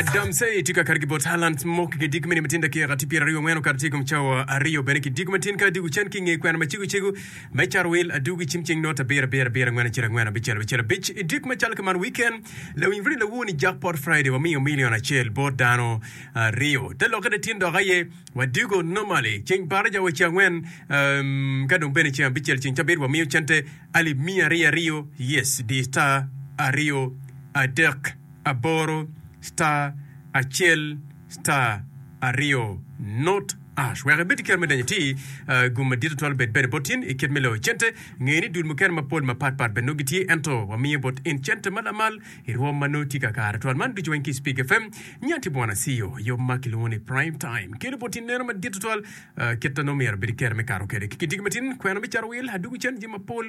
Damsey tye ka kato ki bot talant mo keken dyegi me nino matin dakika tye pyeraryo angwen okato tye i kom cawa aryo bene ki dyegi matin ka adwogo can ki i nge kwena ma cego cego me cato wil adwogo i cim ceng nota abiro abiro abiro angwen acel angwen abicel abicel abic i dyek macalo ki man wiken lawiny runi lawo ni jack pot Friday wamiyo milion acel bot dano aryo te lokke latin dok aye wadwogo normally ceng baraja wa ceng angwen um, ka dong bene ceng abicel ceng cabit wamiyo cente alip miya aryo aryo yes di star aryo adek aboro star acel star aryo not ash wek ibed ki kero me donyo iti gum madit tutwal obed bene bot in ikit me loyo cente ngeye ni dul mukene mapol mapat pat bene nongo gitye ento wamiyo bot in cente ma lamal irwom ma nongo tye kakare twal man ducu weng ki speak fm nyo ati bwana CEO yo ma kilwongo ni prime time kelo bot in neno madit tutwal kit na nongo myero bed kero me kato kede ki kidigi matin kwena me cato wil adugu cen jami mapol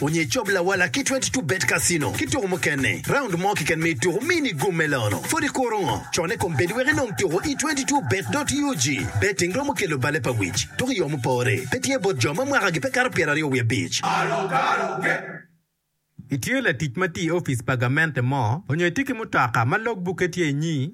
Onyo icob lawala ki twenty two bet casino ki tuku mukene, round mo kiken me tuku mini gum me lono pud ikuro ngo con ikom bedi wek inong tuku i twenty two bet dot ug. Betting romo kelo bale pa wic tuku iyo mupore pe tye bot jo ma mwaka gi pe kato pyera aryo wiye abic. Itye latic ma tye i opic pa gamente mo onyo itye ki mutoka ma log buke tye inyi